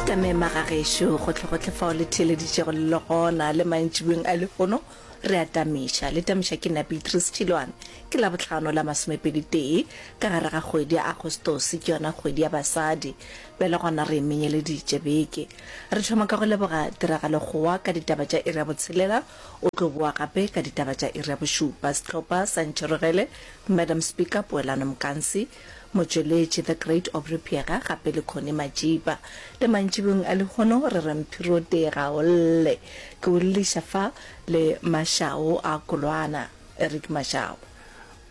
tamema ga gešo gotlhegotlhe fao le theeleditšego le le gona le mantšibeng a lehono re a tamiša le tamiša ke nna beatrice tšhilwane ke la botlhano la masomepedi tee ka gare ga kgwedi ya agostosi ke yona kgwedi ya basadi bjale gona re menyeleditše beke re thoma ka go leboga tiragalo gowa ka ditaba tša iri ya botshelela o tlo boa gape ka ditaba tša iri ya bošupa setlhopha sa ntšherogele madam speaker poelano mokansi Motšweletši The Great Aubrey Piega gape le Connie Majiba. Le mantšibong a lehono re re Mphirote ga o lle. Ke o lliša fa le Mashao a Kolwana, Eric Mashao.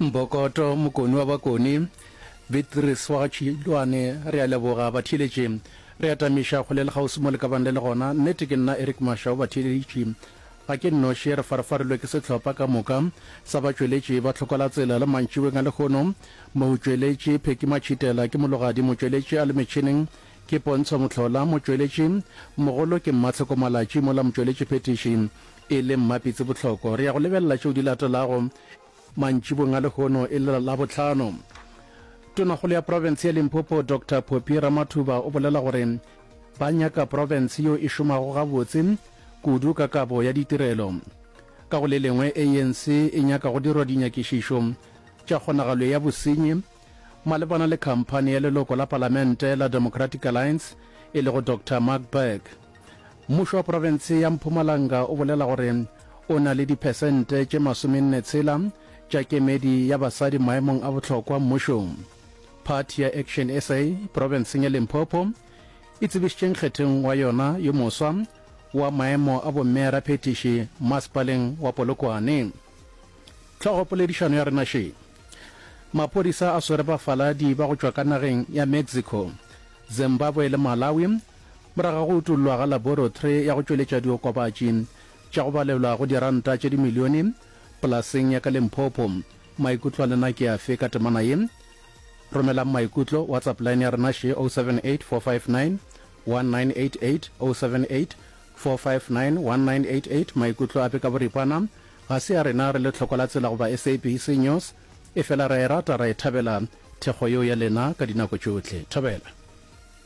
Mbokoto, Mokoni wa Bakoni, Beatrice wa ga Tšhilwane, re a leboga batheeletši. Re atamiša kgole le kgauswi mo le ka bang le le gona. Nnete ke nna Eric Mashao, batheeletši Ga ke nnoši, re farafarilwe ke sehlopha ka moka sa batšweletši ba Tlhokwalatsela le mantšiboeng a lehono. Motšweletši Phecky Matšhitela ke mologadi motšweletši a le metšhineng ke Pontsho Mohlola, motšweletši mogolo ke Mmatlhoko Malatši mola motšweletšiphethiši e le Mmapitsi Bohloko. Re ya go lebelela tšeo di latelago Mantšibong a lehono e le Labohlano, tonakgolo ya profense ya Limpopo Doctor Phophi Ramathuba o bolela gore ba nyaka profense yo e šomago gabotse kudu ka kabo ya ditirelo. Ka go le lengwe, ANC e nyaka go dirwa dinyakišišo tša kgonagalo ya bosenyi malebana le khamphani ya leloko la palamente la Democratic Alliance e lego Doctor Mark Burke. Mmušo wa profense ya Mpumalanga o bolela gore o na le diphesente tše masomenne tshela tša kemedi ya basadi maemong a bohlokwa mmušong. Phathi ya Action sa profenseng ya Limpopo e tsebišitše nkgetheng wa yona yo moswa wa maemo a bomme raphethiši masepaleng wa Polokwane. Tlhogo poledišano ya rena še. Maphodisa a swere bafaladi ba go tšwa ka nageng ya Mexico, Zimbabwe le Malawi Morago ga go utollwa ga laboratory ya go tšweletša diokobatši tša go balelwa go diranta tše dimilione polaseng ya ka Limpopo, maikutlo a lena ke afe ka temana ye? Romelang maikutlo WhatsApp line ya rena še 078 459 1988 078 459 1988 Maikutlo ape ka boripana ga se a rena re le tlhoko la tsela goba SABC News efela ra e rata ra e thabela thekgo yeo ya lena ka dinako tšohle. Thobela.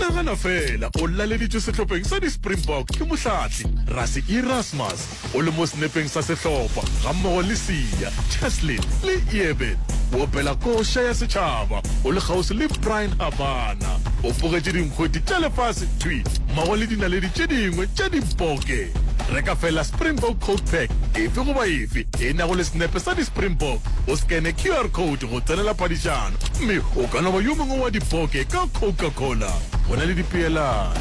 nagana fela o laleditšwe sehlopheng sa di-springbok ke mohlathi rasi erasmus o le mo senepeng sa sehlopha gammogo le sia cheslin le eben o opela koša ya setšhaba o le kgauswi le brian habana o pogetše dinkgweti tša lefase thwi mmogo le dinaledi tše dingwe tša dimpoke re ka fela springbok code pack efe goba efe e nago le senepe sa di-springbok o scane qr code Go tsenela padišano gomme o ka no ba yo mongwe wa dipoke ka Coca-Cola. Go na le dipeelano.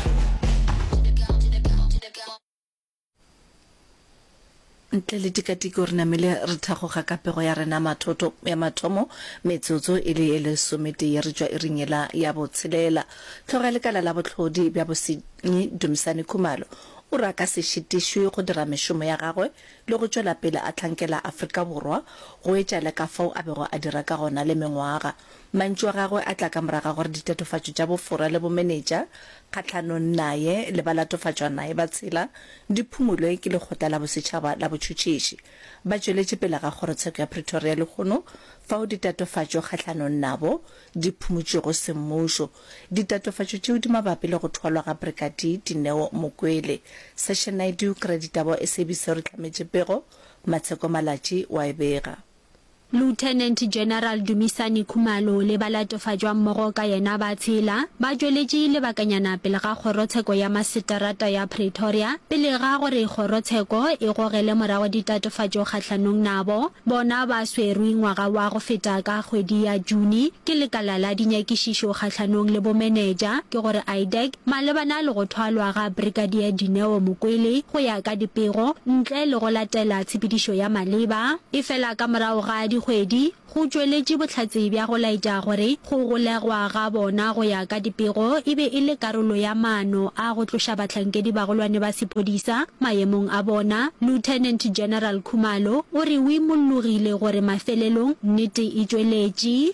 Ntle le tikatiko re namile re thagoga ka pego ya rena mathoto ya mathomo metsotso e le ye lesometee re tšwa iring yela ya botshelela. Hlogo ya lekala la bohlodi bja bosenyi Dumisani Khumalo o re a ka se šitišwe go dira mešomo ya gagwe le go tšwela pele a hlankela Afrika Borwa go etša le ka fao a bego a dira ka gona le mengwaga. Mantšu a gagwe a tla ka morago ga gore ditatofatšo tša bofora le bomenetša kgahlanong naye le balatofatšwa naye ba tshela di phumolwe ke Lekgotla la Bosetšhaba la Botšhotšhisi ba tšweletše pele ga Kgorotsheko ya Pretoria lehono fao ditatofatšo kgahlanong nabo di phumotšwego semmušo Ditatofatšo tšeo di mabapi le go thwalwa ga Brigadier Dineo Mokwele. Session Naidoo Kreditabo SABC o re hlametše pego, Matsheko Malatji o a e bega. Lieutenant General Dumisani Khumalo le ba latofatšwa mmogo ka yena ba tshela ba tšweletše lebakanyana pele ga kgorotsheko ya maseterata ya Pretoria pele ga gore kgorotsheko e gogele morago ditatofatšo kgahlanong nabo. Bona ba swerwe ngwaga wa go feta ka kgwedi ya June Ke lekala la dinyakišišo kgahlanong le bomenetša ke go re IDAC malebana le go thwalwa ga Brigadier Dineo Mokwele go ya ka dipego ntle le go latela tshepedišo ya maleba. Efela ka morago ga dikgwedi go tšweletše bohlatse bja go laetša gore go golegwa ga bona go ya ka dipego e be e le karolo ya maano a go tloša bahlankedi-bagolwane ba sephodisa Maemong a bona, Lieutenant General Khumalo o re o imollogile gore mafelelong nnete e tšweletše.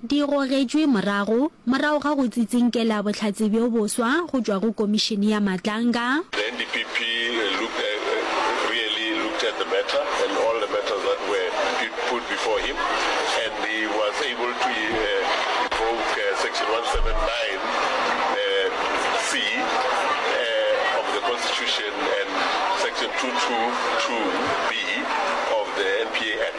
Di gogetšwe morago, morago ga go tsitsinkela bohlatse bjo boswa go tšwa go Komišene ya Matlanga. The NDPP looked at, really looked at the matter and all the matters that were put before him and he was able to invoke section 179 C of the Constitution and section 222 B of the NPA Act.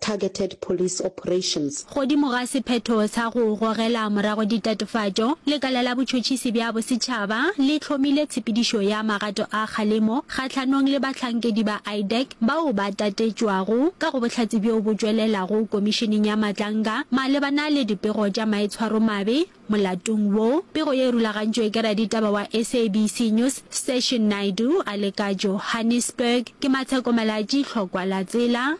targeted police operations. Godimo ga sephetho sa go gogela morago ditatofatšo, lekala la botšhotšhisi bja bosetšhaba le hlomile tshepedišo ya magato a kgalemo kgahlanong le bahlankedi ba IDAC bao ba tatetšwago ka go bohlatse bjo bo tšwelelago Komišeneng ya Matlanga malebana le dipego tša maitshwaromabe molatong wo. Pego ye e rulagantšwe ke raditaba wa SABC News Session Naidoo a le ka Johannesburg. Ke Matsheko Malatji, Hlokwa la Tsela.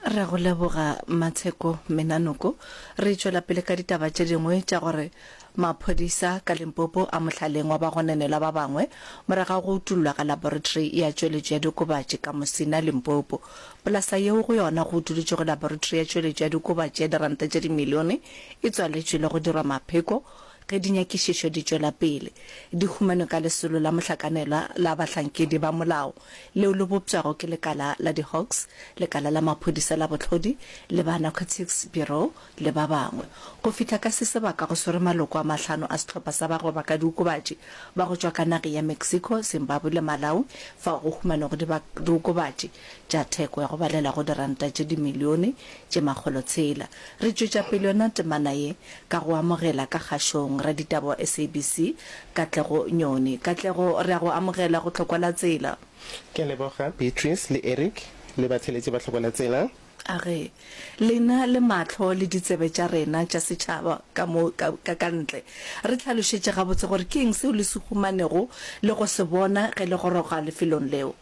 re go leboga matsheko menanoko re tšwela pele ka ditaba tše dingwe tša gore maphodisa ka limpopo a mohlaleng wa bagonenelwa ba bangwe moraga go utullwa ga laboratory ya tšweletšo ya dikobatši ka mosina limpopo polasa yeo go yona go utulutšwe go laboratory ya tšweletšo ya dikobatši ya diranta tše dimilione e tswaletšwe le go dirwa mapheko Ge dinyakišišo di tšwela pele, di humanwe ka lesolo la mohlakanelwa la bahlankedi ba molao leo le bopšwago ke lekala la di-Hawks, lekala la maphodisa la bohlodi le ba Narcotics Bureau le ba bangwe. Go fihla ka se sebaka go swere maloko a mahlano a sehlopha sa bagoba ka diokobatši ba go tšwa ka nage ya Mexico, Zimbabwe le Malawi fao go humanego diokobatši tša theko ya go balela go diranta tše dimilione tše makgolo tshela. Re tšwetša pele yona temana ye ka go amogela ka kgašong raditaba wa SABC, Katlego Nyoni. Katlego, re a go amogela go Tlhokwa la Tsela. Ke a leboga Beatrice le Eric le batheeletši ba Tlhokwa la Tsela. A re, Lena le mahlo le ditsebe tša rena tša setšhaba ka mo ka ka ntle, re tlhalošetše gabotse gore ke eng seo le se humanego le go se bona ge le goroga lefelong leo.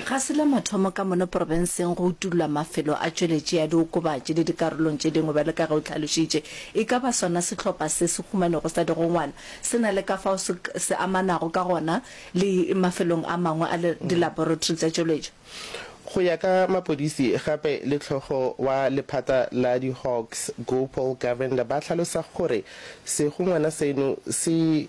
Ga se la mathomo ka mono porofenseng go utullwa mafelo a tšweletši ya diokobatši le dikarolong tše dingwe bjalo ka ge o hlalošitše. E ka ba sona sehlopha se se humanego sa digongwana se na le ka fao se se amanago ka gona le mafelong a mangwe a dilaboratory tša tšweletšo? Go ya ka mapodisi, gape le hlogo wa lephata la di-Hawks, Gopal Govender ba hlalosa gore segongwana seno se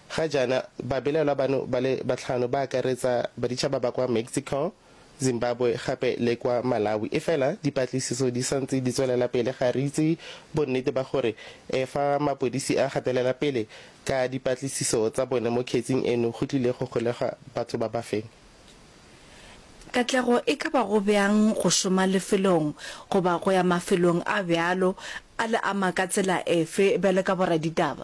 Ga jaana, babelaelwa bano ba le batlhano ba akaretsa baditšhaba ba kwa Mexico, Zimbabwe gape le kwa Malawi. Efela, dipatlisiso di sa ntse di tswelela pele. Ga re itse bonnete ba gore e fa mapodisi a gatelela pele ka dipatlisiso tsa bone mo kgetsing eno go tlile go golega batho ba ba feng. Katlego e ka ba go bjang go šoma lefelong goba go ya mafelong a bjalo a le ama ka tsela efe bjalo ka boraditaba?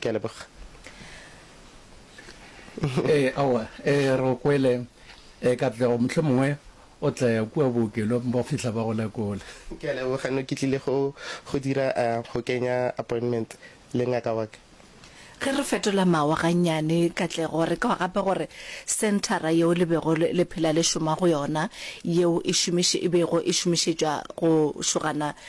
Ke a leboga. Ee, aowa, ee, re go kwele. Ee, Katlego, mohlomongwe o tla ya kua bookelong ba go fihla ba go lekole. Ke a leboga, no ke tlile go, go dira, a, go kenya appointment le ngaka wa ka. Ge re fetola mawa gannyane, Katlego, re kwa gape gore senthara yeo le bego le phela le šoma go yona, yeo e šomiše, e bego e šomišetšwa go šogana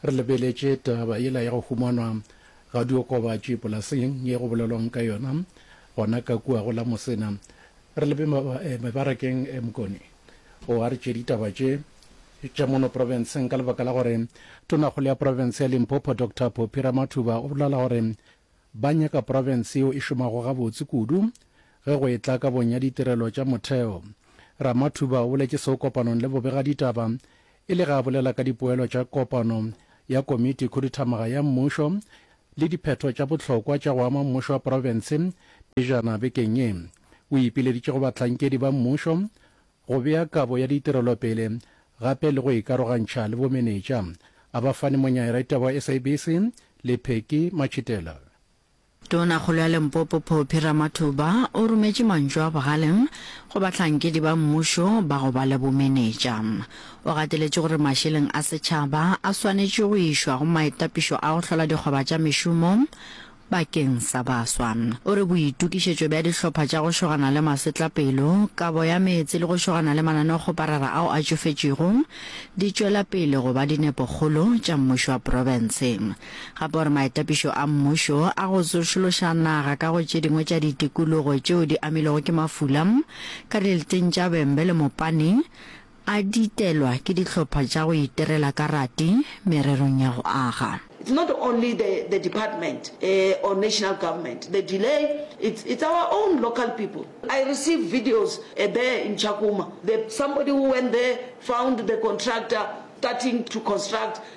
Re lebeletše taba yela ya go humanwa ga diokobatši polaseng ye go bolelwang ka yona gona ka kua go la Mosena. Re lebe mebarakeng e Mkoni o a re tše ditaba tše tša mono profenseng ka lebaka la gore Tonakgolo ya profense ya Limpopo Doctor Poppy Ramathuba o bolela gore ba nyaka profense yeo e šomago gabotse kudu ge go etla kabong ya ditirelo tša motheo. Ramathuba o boletše seo kopanong le bobegaditaba E le ge a bolela ka dipoelo tša kopano ya Komiti Khuduthamaga ya Mmušo le diphetho tša bohlokwa tša go ama mmušo wa profense pejana bekeng ye, o ipileditše go bahlankedi ba mmušo go bea kabo ya ditirelo pele gape le go ikarogantšha le bomenetša, a ba fane Monyaeretebo wa SABC, Lepheki Matšhitela. Tonakgolo ya Limpopo Phophi Ramathuba o rometše mantšu a bogale go bahlankedi ba mmušo ba go ba le bomenetša. O gateletše gore mašeleng a setšhaba a swanetše go išwa go maitapišo a go hlola dikgoba tša mešomo bakeng sa baswa. O re boitokišetšo bja dihlopha tša go šogana le masetlapelo, kabo ya meetse le go šogana le mananeokgoparara ao a tšofetšego di tšwela pele go ba dinepokgolo tša mmušo wa profense. gape gore maitapišo a mmušo a go tsošološa naga ka go tše dingwe tša ditikologo tšeo di amilwego ke mafula ka dileteng tša Bembe le Mopane a ditelwa ke dihlopha tša go iterela ka rati mererong ya go aga. It's not only the the department uh, or national government. The delay, it's it's our own local people. I received videos uh, there in Chakuma. The, somebody who went there found the contractor starting to construct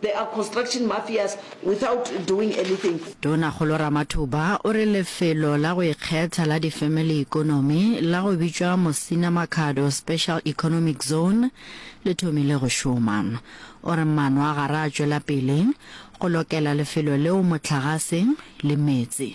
There are construction mafias without doing anything. Tonakgolo Ramathuba o re lefelo la go ikgetha la di-family economy la go bitšwa Musina Makhado Special Economic Zone le thomile go šoma. O re maano a gare a tšwela pele go lokela lefelo leo mohlagase le meetse.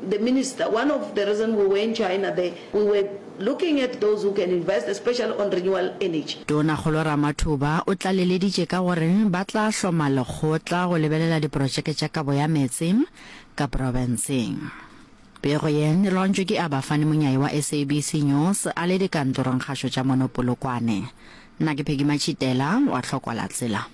The minister, one of the reason we were in China there, we were looking at those who can invest especially on renewal energy. Tona Kgolo Ramathuba o tlaleleditše ka gore ba tla hloma lekgotla go lebelela diprotšeke tša kabo ya meetse ka profenseng. Pego ye e lontšwe ke Abba Fani Monyayi wa SABC News a le dikantorongkgašo tša mono Polokwane. Nna ke Peggy Matšhitela wa Hlokwalatsela.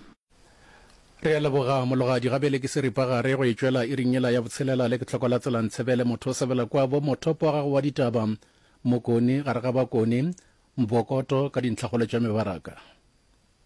Re a leboga mologadi gabele ke seripagare go e tšwela iring yela ya botshelela le ke tlhoko la tsela ntshebele motho o sebela kwa bo mothopo wa gago wa ditaba mokoni gare ga bakoni mbokoto ka dintlhakgolo tša mebaraka